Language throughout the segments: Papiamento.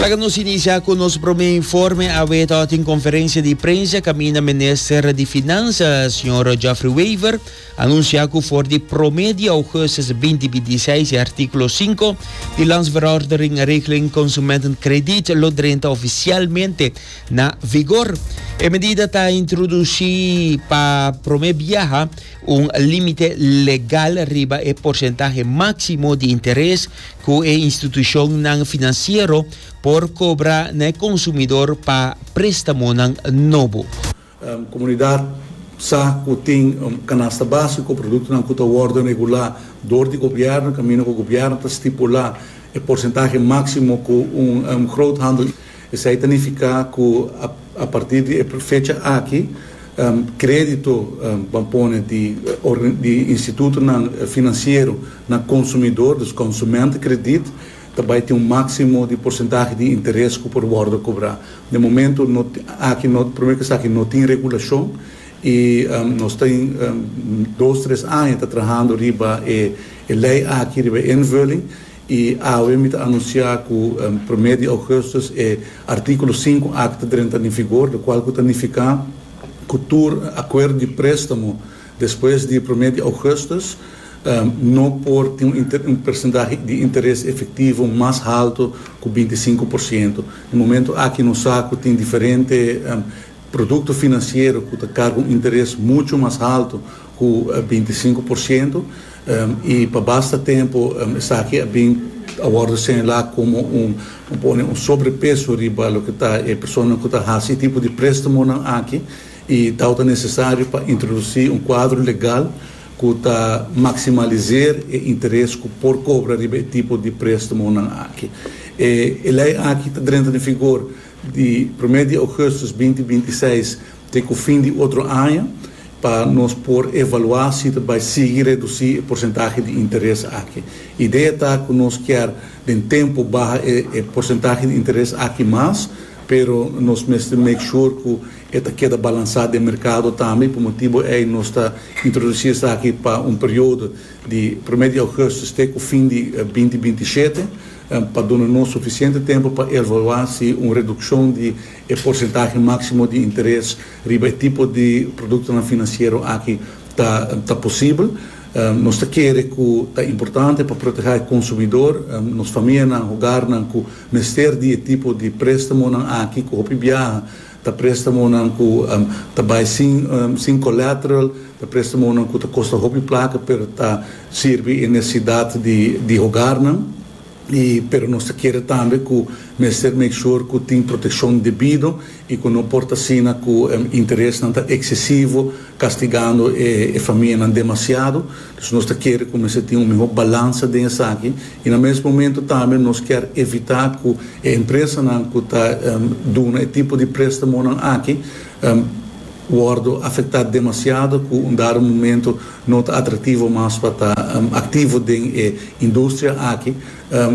Laga nos inicia cu nos prome informe. Awe ta tin conferencia di prensa caminda minister di Finansa, señor Geoffrey Wever, anuncia cu for di prome di augustus binti binti i seis e articulo cinco di Landsverordening Regeling Consumentenkrediet lo drenta oficialmente na vigor. E medida ta introduci pa prome biaha un limite legal riba e porcentahe maximo di interes cu e institucionnan financiero por cobra na e consumidor pa prestamonan nobo. Comunidad sa cu tin un canasta basico productonan cu ta wordo regula door di gobierno caminda cu gobierno ta stipula e porcentahe maximo cu un groothandel Esei ta nifiká ku a partir di e fecha aki krédito ban pone di institutonan finansiero na konsumidor, dus konsumentekrediet, ta bai tin un máksimo di porsentahe di interes ku por wòrdu kobrá. Den momentu aki primer kes aki no tin regulashon i nos ta dos tres aña ta trahando riba e lei aki, riba e invulling. I awe mi ta anunciá cu primer di augustus e Articulo sinku Act ta drenta den vigor, locual cu ta nificá cu tur acuerdo di préstamo despues di primer di augustus no por tin un percentahe di interes efectivo mas halto cu binti i sinku por ciento. Den momento aki nos sa cu tin diferente producto financiero cu ta carga un interes mucho mas halto. cu binti sinku por ciento, y pa basta tempo esaki a bin a wordo señala como un un pone un sobrepeso riba loke ta e personanan cu ta haci e tipo di prestamonan aki, y tau ta necesario pa introduci un cuadro legal cu ta maximalizer e interes cu por cobra riba e tipo di prestamonan aki. E e ley aki ta drenta den vigor di primer di augustus binti binti seis. Te ku fin di otro aña pa nos por evaluá si ta bai sigui redusí e porsentahe di interes aki. Idea ta ku nos kier den tempu baha e porsentahe di interes aki mas, pero nos mester make sure ku e ta keda balansá den merkado tambe i pa motibu ei nos ta introdusí esaki pa un periodo di promé di ougùstus te ku fin di binti binti i shete pa duna nos sufisiente tempu pa evaluá si un redukshon di E porsentahe máksimo di interes riba e tipo di produktonan finansiero aki ta ta posibel. Nos ta kere ku ta importante pa protehá e konsumidor, nos famianan, hogarnan ku mester di e tipo di préstamonan aki ku hopi biaha ta préstamonan ku ta bai sin sin kolatral, ta préstamonan ku ta kosta hopi plaka pero ta sirbi e nesesidat di di hogarnan. y pero nos ta kere tambe cu mester make sure cu tin proteccion debido y cu no por ta asina cu interesnan ta excesivo castigando e famianan demasiado, dus nos ta kere cu mester tin un mihor balansa den esaki y na mes momento tambe nos kier evita cu e empresanan cu ta duna e tipo di prestamonan aki wordo afecta demasiado cu un dado momento. No ta atractivo mas pa ta activo den e industria aki,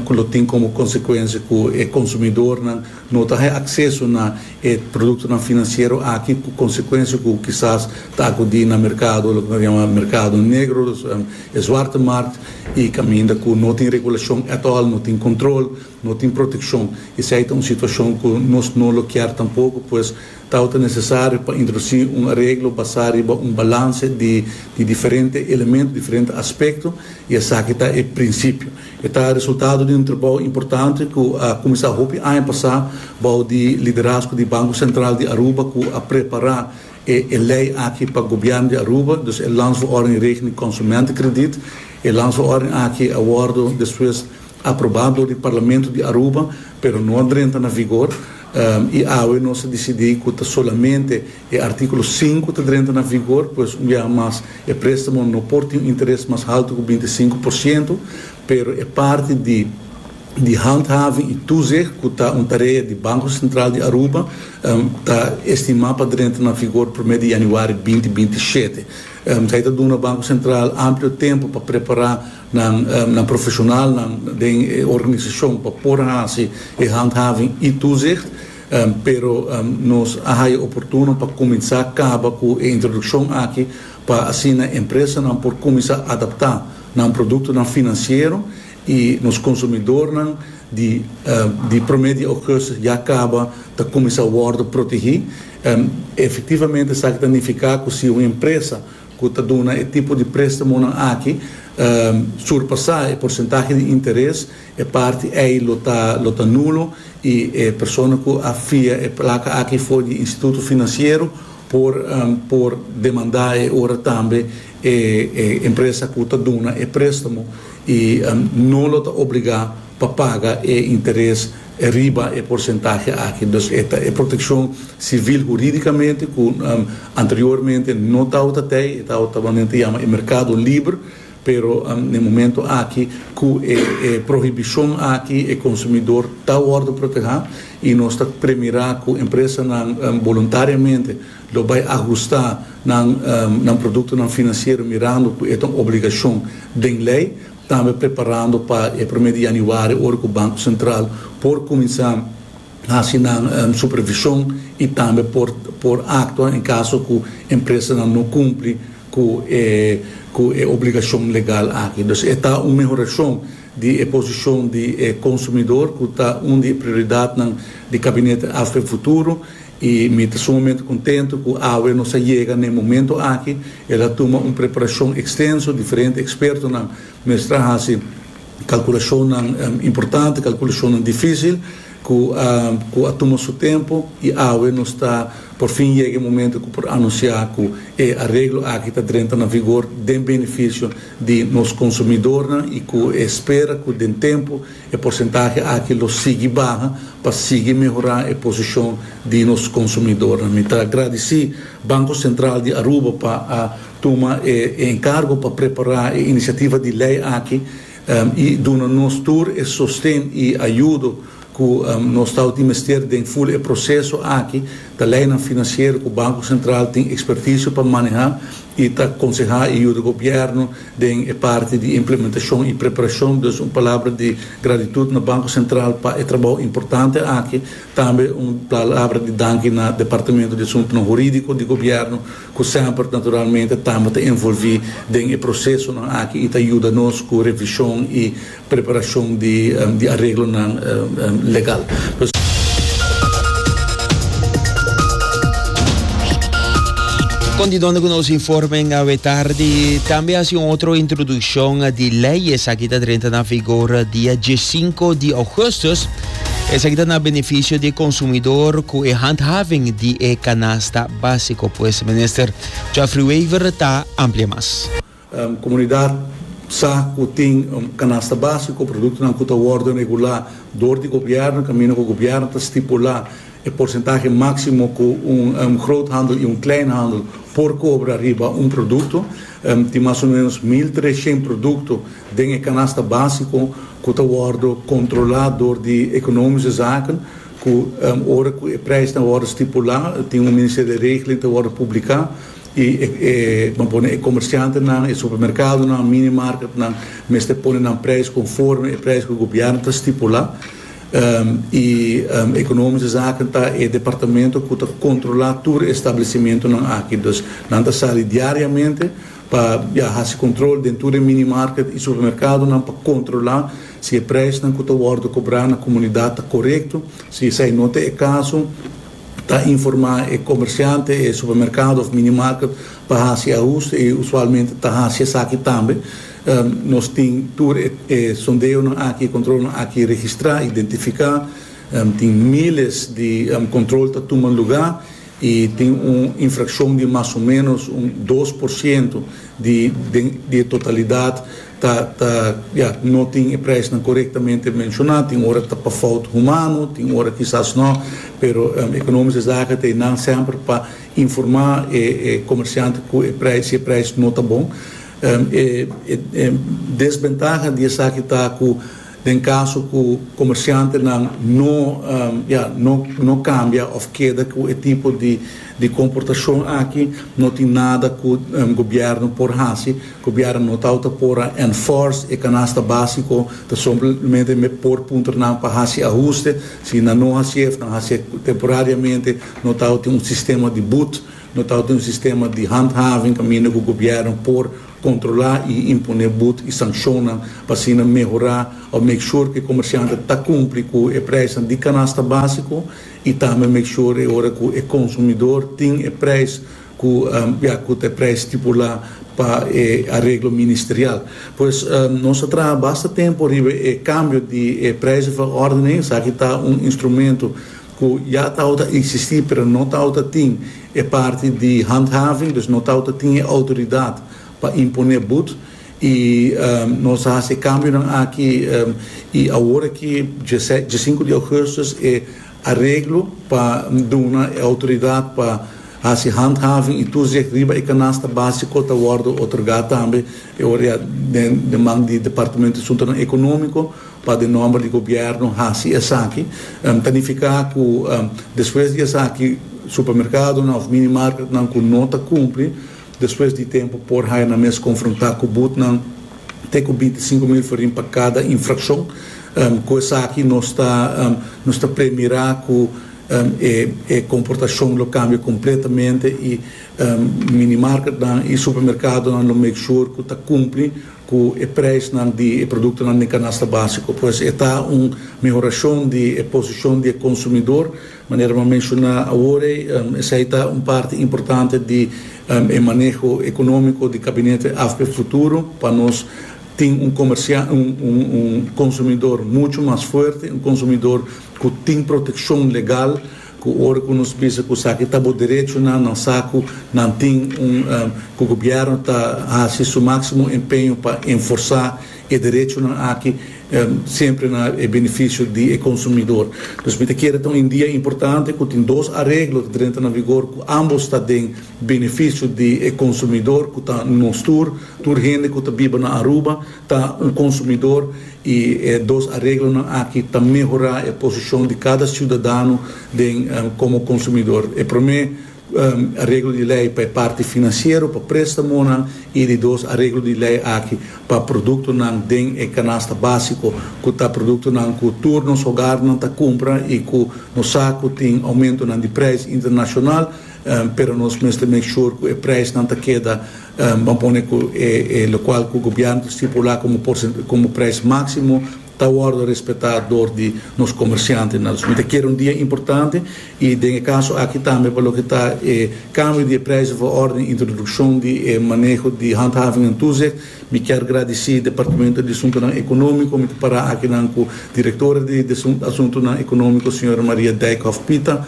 cu lo tin como consecuencia cu e consumidornan no ta haya acceso na e productonan financiero aki, cu consecuencia cu kisas ta acudi na mercado, loke nos ta yama mercado negro, e zwarte markt, y caminda cu no tin regulacion at all, no tin control, no tin proteccion. Esey ta un situacion cu nos no lo kier tampoco, pues, Tau ta nesesario pa introduci un areglo basá riba un balanse di di diferente elemento, diferente aspekto, i esaki ta e prinsipio. E ta resultado di un trabou importante ku a kuminsá hopi aña pasá bou di liderazgo di Banko Sentral di Aruba ku a prepará e e lei aki pa Gobièrnu di Aruba, dus e Landsverordening rekening konsumentenkrediet. E Landsverordening aki a wòrdu despues aprobá dor di Parlamento di Aruba, pero no a drenta na vigor. I awe nos a disidí ku ta solamente e Artíkulo sinku ta drenta na vigor, pues un biaha mas e préstamo no por tin un interes mas haltu ku binti sinku por sientu, pero e parti di di handhaving i toezicht ku ta un tarea di Banko Sentral di Aruba ta estimá pa drenta na vigor promé di yanüari binti binti shete. Esei ta duna Banko Sentral amplio tempu pa prepará Nan na profesionalnan den e organisashon pa por hasi e handhaving i toezicht, pero nos a haya oportuno pa kuminsá kaba ku e introdukshon aki pa asina empresanan por kuminsá adaptá nan produktonan finansiero i nos konsumidornan di di promé di ougùstus ya kaba ta kuminsá wòrdu protegí. Efektivamente esaki ta nifiká ku si un empresa ku ta duna e tipo di prestamonan aki surpasá e porsentahe di interes, e parti ei lo ta lo ta nulo i e persona ku a fia e plaka aki for di e instituto finansiero por por demandá e ora tambe e e empresa ku ta duna e préstamo i no lo ta obligá pa paga e interes E riba e porcentahe aki dus e ta e proteccion civil juridicamente cu anteriormente no tawata t'ey, e tawata lo nen ta yama e mercado liber, pero n'e momento aki cu e e prohibicion aki e consumidor ta wordo proteha y nos ta premira cu empresanan voluntariamente lo bay ahusta nan nan productonan financiero mirando cu e ta un obligacion den ley. Tambe preparando pa e prome di Januari ora cu Banco Central por cuminsa haci nan supervision y tambe por por actua en caso cu empresanan no cumpli cu e cu e obligacion legal aki. Dus e ta un mehoracion di e posicion di e consumidor cu ta un di e prioridadnan di Cabinete Afro e Futuro I mi ta sumamente contento cu awe nos a yega na e momento aki. El a tuma un preparacion extenso, diferente expertonan mestra haci calculacionnan importante, calculacionnan dificil cu cu a tuma su tempo i awe nos ta por fin yega e momento cu por anuncia cu e areglo aki ta drenta na vigor den beneficio di nos consumidornan i cu e spera cu den tempo E porsentahe aki lo sigui baha pa sigui mehorá e posishon di nos konsumidornan. Mi ta gradisí Banko Sentral di Aruba pa a tuma e enkargo pa prepará e inisiativa di lei aki i duna nos tur e sosten i ayudo ku nos tawata mester den ful e proseso aki ta leinan finansiero ku Banko Sentral tin ekspertisio pa manehá. I ta konsehá e yuda gobièrnu den e parti di implementashon i preparashon. Dus un palabra di gratitut na Banko Sentral pa e trabou importante aki. Tambe un palabra di danki na Departamentu di Asuntunan Hurídiko di Gobièrnu ku semper naturalmente tambe ta envolví den e prosesonan aki i ta yuda nos ku revishon i Preparashon di areglonan legal. Kon di donde ku nos informen awe tardi tambe hasi un otro introdukshon di lei esaki ta drenta na vigor dia diesinko di ougustus esaki ta na benefisio di e konsumidor ku e handhaving di e kanasta básiko pues minister Geoffrey Wever ta amplia mas. Komunidat sa ku tin un kanasta básico ku produktonan ku ta wòrdu regulá dor di gobièrnu kaminda ku gobièrnu ta stipulá e porsentahe máksimo ku un groothandel i un kleinhandel por kobra riba un produkto. Tin mas o ménos mil treshent produkto den e kanasta básico ku ta wòrdu kontrolá dor di Ekonomische Zaken ku ora ku e preisnan wòrdu stipulá tin un ministerio di regeling ta wòrdu publiká. I e ban pone e komersiantenan, e supermerkadonan, minimarketnan mester pone nan preis konforme e preis ku gobièrnu ta stipulá. I Ekonomiske Zaken ta e departamento ku ta kontrolá tur e stablesimentunan aki. Dus nan ta sali diariamente pa ya hasi kontrol den tur e minimarket i supermerkadonan pa kontrolá si e preisnan ku ta wòrdu kobrá na komunidat ta korekto. Si esei no ta e kaso, Ta informá e komersiante, e supermerkado òf minimarket pa hasi ahuste i usualmente ta hasi esaki tambe. Nos tin tur e sondeonan aki, e kontrolnan aki registrá, identifiká. Tin míles di kontrol ta tuma lugá i tin un infrakshon di mas o ménos un dos por siento di den di e totalidat. Ta, ta, ya, no tin e prijsnan korektamente menshoná, tin ora ta pa fout humano, tin ora kisas no, pero ekonomish e zaka ta einan semper pa informá e e komersiante ku e prijs, si e prijs no ta bon. E e desbentaha di esaki ta ku, Den caso cu comerciantenan no ya no cambia of keda cu e tipo di comportacion aki, no tin nada cu gobierno por haci. Gobierno no tawata por a enforce e canasta basico, ta somplemente por puntra nan pa haci ahuste. Si nan no haci'e of nan haci'e temporariamente, no tawata tin un sistema di boet, no tawata tin un sistema di handhaving caminda cu gobierno por. Kontrolá i imponé bud i sankshonnan pa asina mehorá òf make sure ku e komersiante ta kumpli ku e preisnan di kanasta básiko i tambe make sure e ora ku e konsumidor tin e preis ku ya ku ta e preis stipulá pa e areglo ministerial. Pues nos a traha basta tempu riba e kambio di e prijzenverordening, esaki ta un instrumento ku ya tabata eksistí pero no tabata tin e parti di handhaving, dus no tabata tin e outoridat pa imponé bud i nos a hasi e kambionan aki i awor aki diesinku di ougustus e areglo pa duna e outoridat pa hasi handhaving i toezicht riba e kanasta básiko ta wòrdu otorgá tambe e ora ya den man di departamento di Asuntonan Ekonómiko. Pa den nòmber di gobièrnu hasi esaki, ta nifiká ku despues di esaki supermerkadonan òf mini marketnan ku no ta kumpli, despues di tempu por haya nan mes konfrontá ku butnan te ku binti sinku mil forin pa kada infrakshon, ku esaki nos ta nos ta premirá ku e komportashon lo kambia kompletamente i mini marketnan i supermerkadonan lo make shur ku ta kumpli. Cu e prijsnan di e productonan den canasta basico pues e ta un mehoracion di e posicion di e consumidor. Manera mi a menciona awor ei, esey ta un parti importante di e maneho economico di Gabinete AFP futuro pa nos tin un comerciante, un consumidor mucho mas fuerte, un consumidor cu tin proteccion legal. Cu ora cu nos bisa cu esaki ta bo derechonan, nan sa cu nan tin un, cu gobierno ta haci su maximo empeño pa enforsa e derechonan aki, siempre na e beneficio di e consumidor. Dus mi ta kere ta un idea importante cu tin dos areglo ta drenta na vigor cu ambos ta den beneficio di e consumidor cu ta nos tur, tur hende cu ta biba na Aruba, ta un konsumidor i e dos areglonan aki ta mehorá e posishon di kada siudadano den komo konsumidor. E promé areglo di lei pa e parti finansiero, pa préstamonan, i di dos areglo di lei aki pa produktonan den e kanasta básiko, ku ta produktonan ku tur nos hogarnan ta kumpra i ku nos sa ku tin oumentonan di preis internashonal, pero nos mester make sure cu e prijsnan ta keda, bo pone cu e locual cu Gobierno ta stipula como prijs maximo ta wordo respeta door di nos comerciantenan. Dus mi ta kere un dia importante y den e caso aki tambe pa loke ta e cambio di e prijsnan for orden introduccion di e maneho di handhaving en toezicht, Mi kier gradisí Departamento di Asuntunan Ekonómiko, mi ta pará akinan ku Direktora di Asuntunan Ekonómiko, señora Maria Dijkhoff Pita,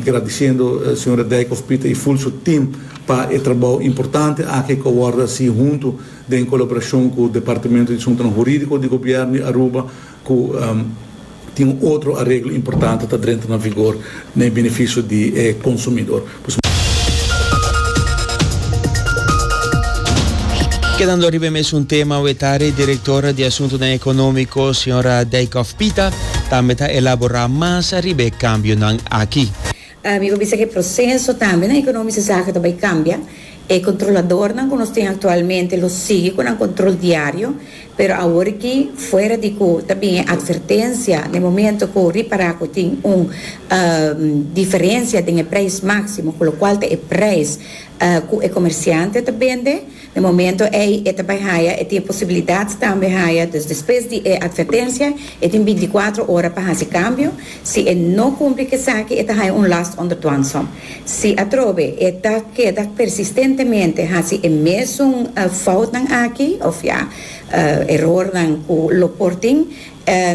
gradisiendo señora Dijkhoff Pita i ful su tim pa e trabou importante aki ku a wòrdu hasí huntu den kolaborashon ku Departamento di Asuntunan Hurídiko di Gobièrnu di Aruba, Cu tin un otro areglo importante ta drenta na vigor na e beneficio di e consumidor. Kedando riba e mesun tema wetari director di asuntonan economico señora Dijkhoff Pita tambe ta elabora mas riba e cambionan aki. Mi por bisa cu e proceso tambe na economice zaken ta bay cambia. E controladornan cu nos tin actualmente lo sigui cu nan control diario, pero awor aki fuera di cu ta bin e advertencia na e momento cu ripara cu tin un diferencia den e prijs maximo cu locual ta e prijs cu e comerciante ta bende, E momento ei e ta bai haya, e tin e posibilidad tambe haya, dus despues di e advertencia e tin binticuatro ora pa haci cambio, si e no cumpli cu esaki e ta haya un last onder dwangsom. Si atrobe e ta keda persistentemente haci e mesun foutnan aki, of ya, erornan cu lo por tin,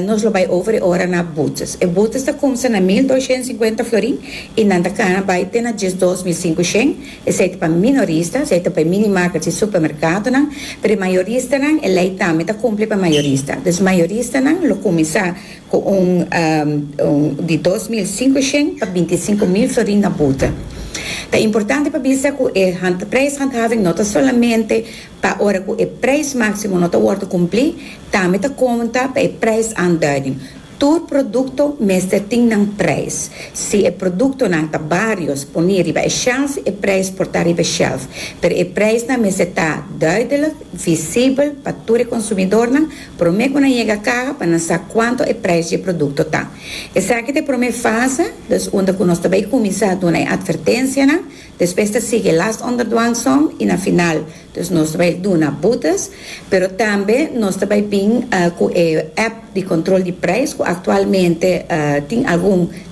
Nos lo bai over e ora na botes. E botes ta comsa na mil doshent sinkuenta florin y nan ta cana bai te na diesdos mil sinku shent. Esey ta pa minorista, esey ta pa e mini market y supermercadonan. Pero e mayoristanan, e ley tambe ta cumpli pa e mayorista. Dus mayoristanan lo cuminsa cu un di dos mil sinku shent pa binti i sinku mil florin na bote. Ta importante pa bisa cu e prijshandhaving no ta solamente. pa ora ku e prijs máksimo no ta wòrdu kumplí, tambe ta konta pa e prijsaandùiding. Tur produkto mester tin nan prijs. Si e produktonan ta barios poní riba e shèlf, e prijs por ta riba e shèlf, pero e prijsnan mester ta dùidelik, visibel pa tur e konsumidornan promé ku nan yega kaha pa nan sa kuantu e prijs di e produkto ta. Esaki ta e promé fase, dus unda ku nos ta bai kuminsá duna e atvertensianan Despues ta sigui e last onderdwang song y na final dus nos ta bay duna boetes pero tambe nos ta bay bin cu e app di control di prijs cu actualmente tin algun